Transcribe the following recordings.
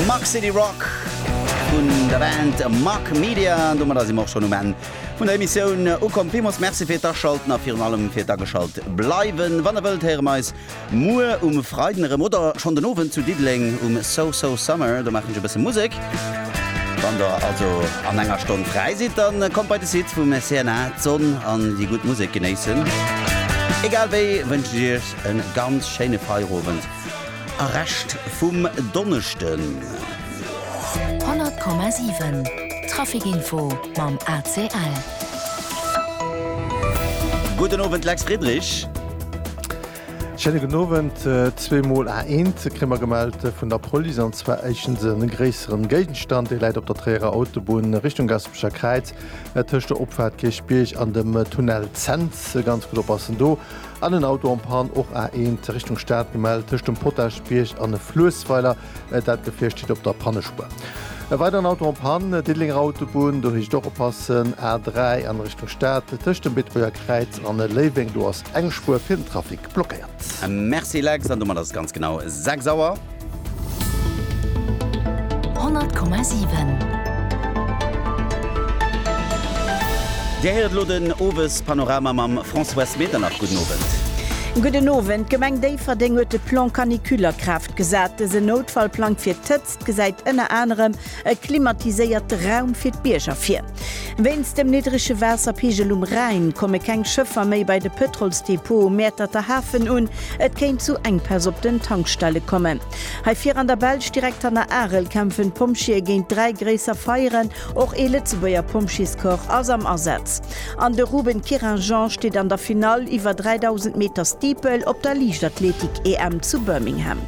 Muck City Rock vun der Band Muck Media. An domadder si mer och schonn um Enn vun der Emissioun ukomm. Villmools Merci fir d'Aschalten a virun allem fir d'Ageschalt bleiwen. Wann der wëllt, héiere mer eis muer um Freiden erëm oder schonn den Owend zu Diddeleng um So So Summer. Do maachen ech e bësse Musek. Wann der also an enger Stonn fräi sidd, da kommt bei de Site vum CNA, d'Sonn an déi gutt Musek genéissen. Egal wéi wënschen ech Iech e ganz schéine Feierowend. A Rescht vum Donneschden. 100,7 Traficinfo mam ACL. Gudden Owend Lex Friedrich. Schéine gudden Owend. Zwee Mol A1 kréie mer gemellt vun der Police, an zwar éischtens e gréisseren Géigenstand, dee läit op der Tréierer Autobunn Richtung Gaspecher Kräiz, tëscht der Opfahrt Kierchbierg an dem Tunnel Cents. Ganz gutt oppassen do. An en Auto en Panne, och A1 Richtung Stad gemellt, tëscht dem Potaschbierg an e Fluessweiler. Dat Gefier steet op der Pannespuer. E weideren Auto en Panne, Diddelenger Autobunn, do heescht et och oppassen. A3 an Richtung Stad, tëscht dem Beetebuerger Kräiz an Léiweng, do ass eng Spuer fir den Trafic blockéiert. Merci Lex, an domat ass et ganz genau 6 Auer. Dir héiert elo den Owespanorama mam Françoise Medernach. Gudden Owend. Gudden Owend. D'Gemeng Déifferdeng huet de Plan canicule a Kraaft gesat. Dëse Noutfallplang fir d'Hëtzt gesäit ënner anerem E klimatiséierte Raum fir d'Bierger vir. Wéinst dem niddrege Waasserpigel um Rhäin komme keng Schëffer méi bei de Pëtrolsdepot um Mäerterter Hafen un. Et kéint zu Enkpäss op den Tankstelle kommen. Hei vir an der Belsch, direkt hanner Arel, kämpfen d'Pompjeeë géint dräi gréisser Feieren. Och ee Lëtzebuerger Pompjeescorps ass am Asaz. An de Ruben Querinjean steet an der Finall iwwer 3000 Meter Steeple op der Liichtathletik-EM zu Birmingham.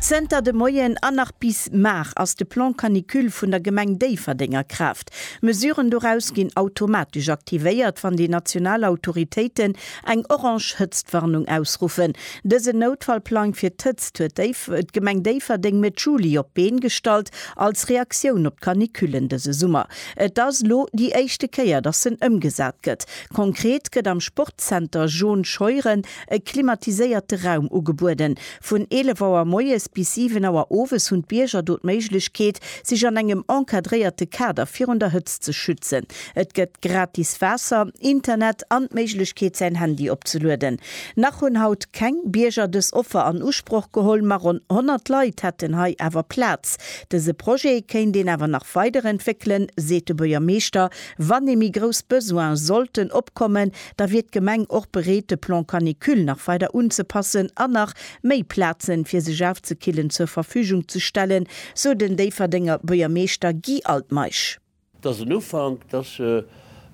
Zënter de Moien an nach bis mar ass de Plan Canicule vun der Gemeng Déifferdeng a Kraaft. Mesuren doraus ginn automatesch aktivéiert, wann déi national Autoritéiten eng orange Hëtztwarnung ausruffen. Dësen Noutfallplang fir d'Hëtzt huet d'Gemeng Déifferdeng Mëtt Juli op d'Been gestallt, als Reaktioun op d'Canicullen dëse Summer. Et ass elo déi éischte Kéier, dass en ëmgesat gëtt. Konkret gëtt am Sportzenter Jaune Scheuren e klimatiséierte Raum ugebueden. Vun 11 Auer moies bis 7 Auer owes hunn d'Bierger do d'Méiglechkeet, sech an engem encadréierte Kader virun der Hëtzt ze schützen. Et gëtt gratis Waasser, Internet an d'Méiglechkeet, säin Handy opzelueden. Nach hunn haut keng Bierger dës Offer an Usproch geholl, ma ronn 100 Leit hätten hei awer Plaz. Dëse Projet kéint een awer nach weiderentwéckelen, seet de Buergermeeschter, wann ee méi grouss Besoine sollten opkommen. da wier d'Gemeng och bereet de Plan canicule nach weider unzepassen an nach méi Plazen fir sech aufzekillen zur Verfügung ze stellen, sou den Déifferdenger Buergermeeschter Guy Altmeisch. Et ass en Ufank, et ass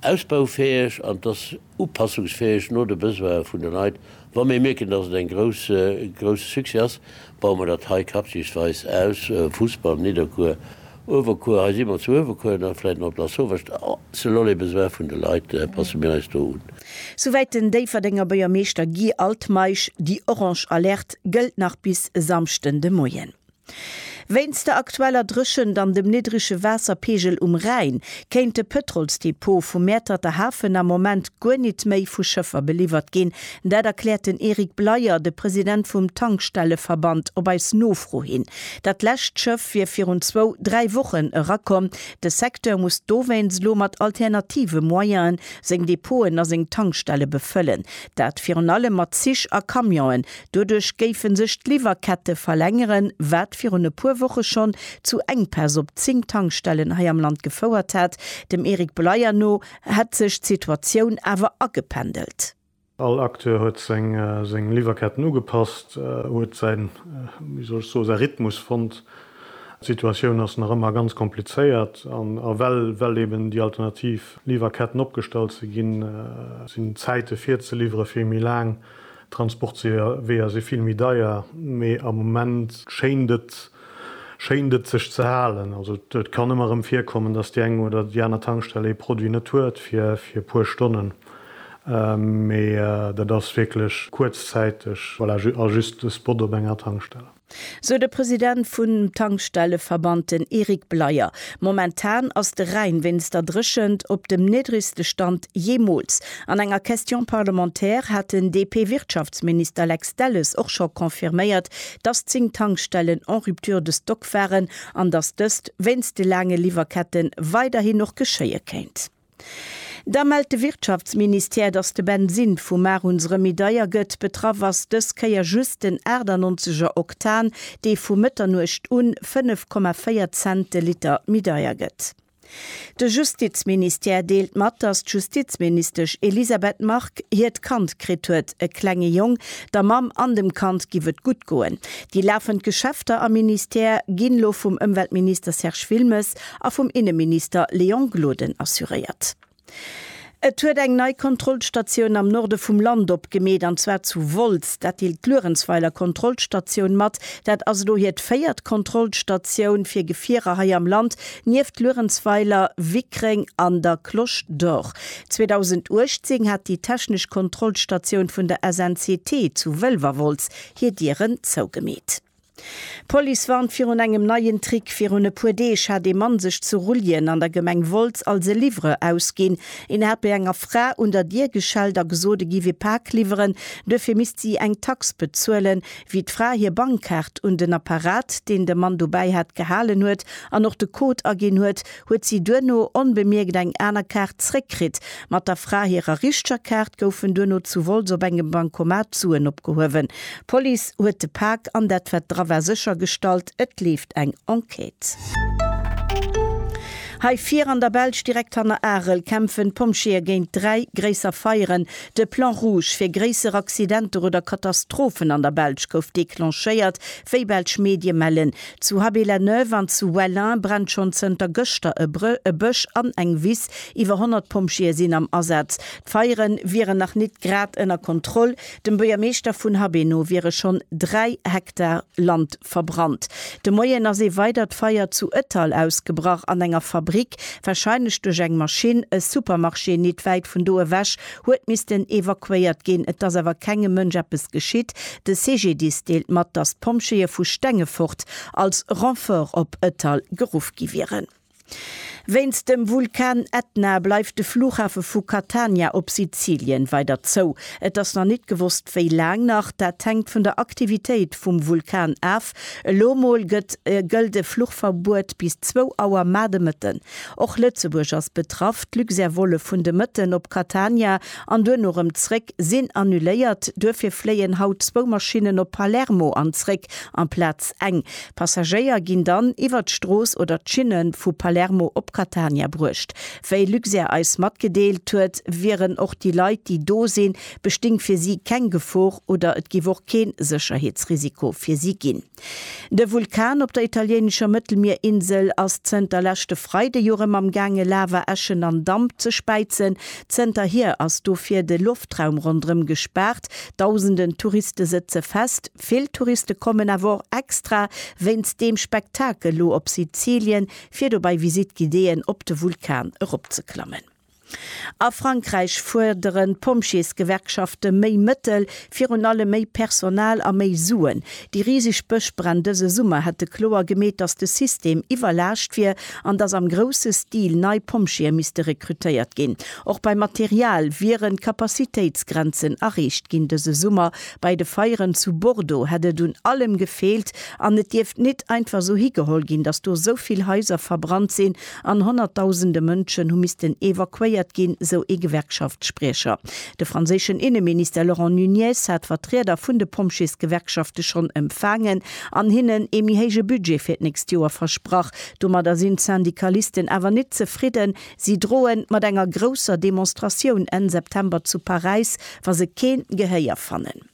ausbaufäeg an et ass upassungsfäeg no de Besoine vun de Leit Wa mir mierken, dass et en grousse Succès ass, baue mer dat hei quartiersweis aus, Fussball, Nidderkuer, Uewerkuer, hei si mer zu Uewerkuer an da vläit nach op Lasauvage, selon les besoins vun de Leit passe mir eis do un. Souwäit den Déifferdenger Buergermeeschter Guy Altmeisch. Déi orange Alerte gëllt nach bis Samschden de Moien. Wéinst der aktueller Dréchent an dem niddrege Waasserpeegel um Rhäin kéint de Pëtrolsdepot vum Mäerterter Hafen am Moment guer nit méi vu Schëffer beliwwert ginn. Dat erkläert den Eric Bleyer, de President vum Tankstelleverband, op eis Nofro hin. Dat lescht Schëff wier virun zwou, dräi Wochen erakomm. De Secteur muss dowéinst elo mat alternative Moyene seng Depoten a seng Tankstelle befëllen. Dat virun allem mat Zich a Camionen, Doduerch géife sech d'Liwwerkette verlängeren, wat virun e puer Woche schonn zu Enkpäss op 10 Tankstellen hei am Land gefouert hat. Dem Eric Bleier no hätt sech d'Situatioun awer agependelt. All Acteur huet seng Liwwerketten ugepasst, huet säin, wéi soll ech soen, säi Rhythmus fonnt. D'Situatioun ass nach ëmmer ganz komplizéiert an well eben déi alternativ Liwwerketten opgestallt si ginn, sinn d'Zäite fir ze liwwere vill méi laang D'Transportweeër si vill méi deier, mee am Moment schéint et, schéint et sech ze halen. Also et kann ëmmer erëm virkommen, dass déi eng oder déi aner Tankstell ee Produit net huet fir e puer Stonnen, mee dat ass wierklech kuerzzäiteg, voilà, a just e Spot op enger Tankstell. sou de President vun Tankstelleverband, den Eric Bleyer. Momentan ass de Rhäin wéinst der Dréchent op dem niddregste Stand jeemools. An enger Question parlementaire hat den DP-Wirtschaftsminister Lex Delles och scho confirméiert, dass 10 Tankstellen en rupture de stock waren an dass dëst wéinst de laange Liwwerkette weiderhin och geschéie kéint. Da mellt de Wirtschaftsministère, datt de Bensin vum Mar un se rëm méi deier gëtt. Betraff ass dës Kéier just den 98er Oktan, dee vu Mëtternuecht un 5,4 Cent de Liter méi deier gëtt. De Justizministère deelt mat, datt d'Justizministesch Elisabeth Margue hiert Kand kritt huet, e klenge Jong. Der Mamm an dem Kand giff et gutt goen. Déi lafend Geschäfter am Ministère ginn elo vum Ëmweltminister Serge Wilmes a vum Inneminister Léon Gloden assuréiert. Et huet eng nei Kontrollstatioun am Norde vum Land opgemeet, an zwar zu Wolz. Dat deelt d'Luerenzweiler Kontrollstatioun mat. Dat ass elo hiert véiert Kontrollstatioun fir Gefierer hei am Land, nieft Luerenzweiler, Wickreng an der Cloche d'Or. 2018 hat déi technesch Kontrollstatioun vun der SNCT zu Wëlwerwolz hir Dieren zougemeet. D'Police warnt virun engem neien Trick. Virun e puer Deeg hat ee Mann sech zu Rulljen an der Gemeng Wolz als e Livreur ausginn. Een hat bei enger Fra un der Dier geschellt a gesot, e giff e Pak liwweren, duerfir misst si eng Tax bezuelen. Wéi d'Fra hir Bankkaart un den Apparat, deen de Mann dobäi hat, gehalen huet an och de Code aginn huet, huet si duerno onbemierkt eng aner Kaart zréckkritt. Mat der Fra hirer richtger Kaart goufen duerno zu Wolz op engem Bankomat Suen opgehuewen. D'Police huet de Pak an dat wat dra war séchergestallt. Et leeft eng Enquête. Hei vir an der Belsch, direkt hanner Arel, kämpfen d'Pompjeeë géint dräi gréisser Feieren. De Plan rouge fir gréisser Accidenter oder Katastrophen an der Belsch gouf declenchéiert, wéi belsch Medie mellen. Zu Haby-la-Neuve an zu Wellin brennt schonn zënter gëschter e Bësch an eng Wiss. Iwwer 100 Pompjeeë sinn am Asaz. D'Feiere wieren nach nit grad ënner Kontroll. Dem Buergermeeschter vun Haby no wiere schonn 3 Hektar Land verbrannt. De Moien ass ee weidert Feier zu Ëttal ausgebrach an enger Fabrick. Warscheinlech duerch eng Maschinn. E Supermarché nit wäit vun do ewech huet missten evakuéiert ginn. Et ass awer kengem Mënsch eppes geschitt. De CGDIS deelt mat, datt d'Pompjeeë vu Stengefort als Renfort op Ëttal geruff gi wieren. Wéinst dem Vulkan Etna bleift de Flughafe vu Catania op Sizilien weider zou. Et ass nach nit gewosst wéi laang nach. Dat hänkt vun der Aktivitéit vum Vulkan af. Elo mol gëtt gëllt e Fluchverbuet bis zwou Auer mar de Mëtten. Och Lëtzebuerg ass betraff. D'Luxair-Vole vun de Mëtten op Catania an duerno erëm zréck sinn annuléiert. Duerfir fléien haut zwou Maschinnen op Palermo an zréck amplaz eng. Passagéier ginn dann iwwer d'Strooss oder d'Schinne vu Palermo op Catania bruecht. Wéi Luxair eis matgedeelt huet, wieren och déi Leit, déi do sinn, besting fir si keng Gefor oder et giff och keen Sécherheetsrisiko fir si gin. De Vulkan op der italiéinescher Mëttelmierinsel ass zënter leschte Freide jo rem am gaange Lava, Äschen an Damp ze späizen. Zënter hier ass dofir de Loftraum rondrem gespaart. Dausenden Touriste sëtze fest. Vill Touriste kommen awer och extra wéinst deem Spektakel lo op Sizilien fir do bei Visite guidéeën op de Vulkan eropzeklammen. A Frankräich fuerderen d'Pompjeesgewerkschafte méi Mëttel, virun allem méi Personal a méi Suen. Déi riseg Bëschbränn dëse Summer hätte kloer gemeet, datt de System iwwerlaascht wier an datt am grousse Stil nei Pompjeeë misste rekrutéiert ginn. Och beim Material wieren d'Capacitéitsgrenzen erreecht ginn. Dëse Summer bei de Feieren zu Bordeaux hätt et un allem gefeelt an et dierft nit einfach esou higeholl ginn, datt do esou vill Haiser verbrannt sinn An honnertdausende Mënschen hu missten evakuéiert ginn, sou ee Gewerkschaftsspriecher. De franséischen Inneminister Laurent Nunez hat Vertrieder vun de Pompjeesgewerkschafte schonn empfaangen an hinnen ee méi héije Budget fir d'nächst Joer versprach. Domadder sinn d'Syndikalisten awer net zefridden. Si droe mat enger grousser Demonstratioun Enn September zu Paräis, wa se keen Gehéier fannen.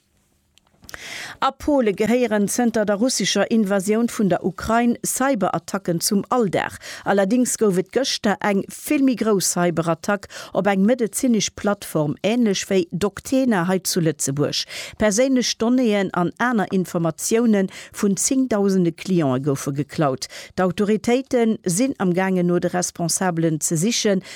A Pole gehéieren zënter der russescher Invasioun vun der Ukrain Cyberattacken zum Alldag. Allerdéngs gouf et gëschter eng vill méi grouss Cyberattack op eng medezinesch Plattform, änlech wéi Doctena hei zu Lëtzebuerg. Perséinlech Donnéeën an aner Informatioune vun zéngdausende Cliente goufe geklaut. D'Autoritéite sinn am gaangen no de Responsabelen ze sichen.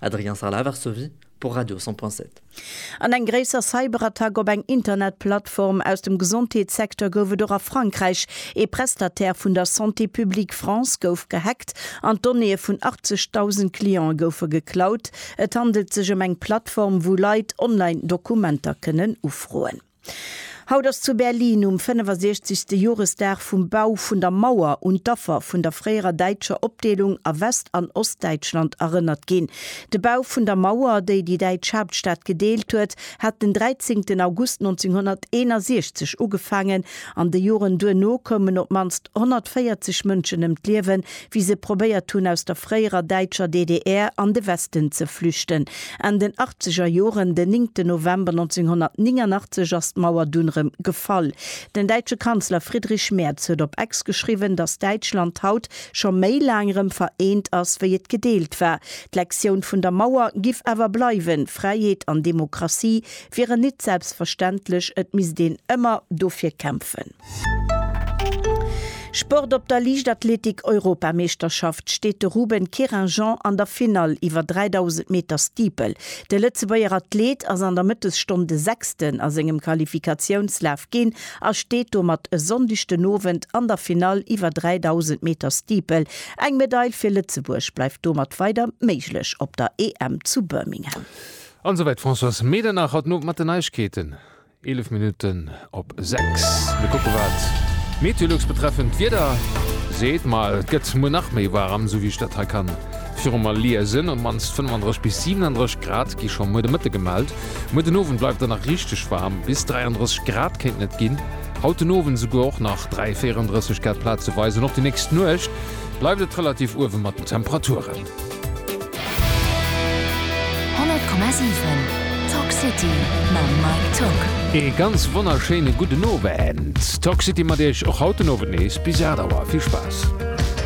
Adrien Sarlat, Varsovie, pour Radio 100.7. An eng gréisser Cyberattack op eng Internetplattform aus dem Gesondheetssecteur gouf et och a Frankräich. Ee Prestataire vun der Santé Publique France gouf gehackt an d'Donnéeë vun 80.000 Clientë goufe geklaut. Et handelt sech ëm eng Plattform, wou Leit online Dokumenter kënnen ufroen. Haut ass zu Berlin um 65. Joresdag vum Bau vun der Mauer un d'Affer vun der fréierer däitscher Opdeelung a West an Ostdäitschland erënnert ginn. De Bau vun der Mauer, déi déi däitsch Haaptstad gedeelt huet, hat den 13 August 1961 ugefaangen. An de Joren duerno koumen op d'mannst 140 Mënschen ëm d'Liewen, wéi se probéiert hunn aus der fréierer däitscher DDR an de Westen ze flüchten. Enn den achtzeger Joren, den néngten November 1989, ass d'Mauer dunn erëm gefall. Den däitsche Kanzler Friedrich Merz huet op Ex geschriwwen, datt Däitschland haut scho méi laang erëm vereent ass, wéi et gedeelt war. D'Lektioun vun der Mauer giff awer bleiwen, Fräiheet an Demokratie wieren nit selbstverständlech, et misst een ëmmer dofir kämpfen. Sport Op der Liichtathletik-Europameeschterschaft steet de Ruben Querinjean an der Finall iwwer 3000 Meter Steeple. De Lëtzebuerger Athleet ass an der Mëttesstonn de Sechsten a sengem Qualifikatiounslaf ginn a steet domat e Sonndeg den Owend an der Finall iwwer 3000 Meter Steeple. Eng Medail fir Lëtzebuerg bleift domat weider méiglech op der EM zu Birmingham. An esouwäit d'Françoise Medernach haut den Owend mat den Neiegkeeten. 11 Minutten op 6. Mir kucke wat Meteolux betreffend d'Wieder seet. Ma et gëtt muer nach méi waarem, esou wéi ech dat hei ka viru mer liesen. Op d'mannst 35 bis 37 Grad gi scho muer de Mëtte gemellt. Muer den Owend bleift dann nach richteg waarm, bis 33 Grad kéinten et ginn. Haut den Owend esouguer och nach 3, 34 Grad plazeweis an och déi nächst Nuecht bleift et relativ uewe mat den Temperaturen. 100,7 Talk City mam Mike Tock. Ee ganz wonnerschéine gudden Owend. Talk City mat Iech och haut den Owend nees bis 8 Auer. Vill Spaass.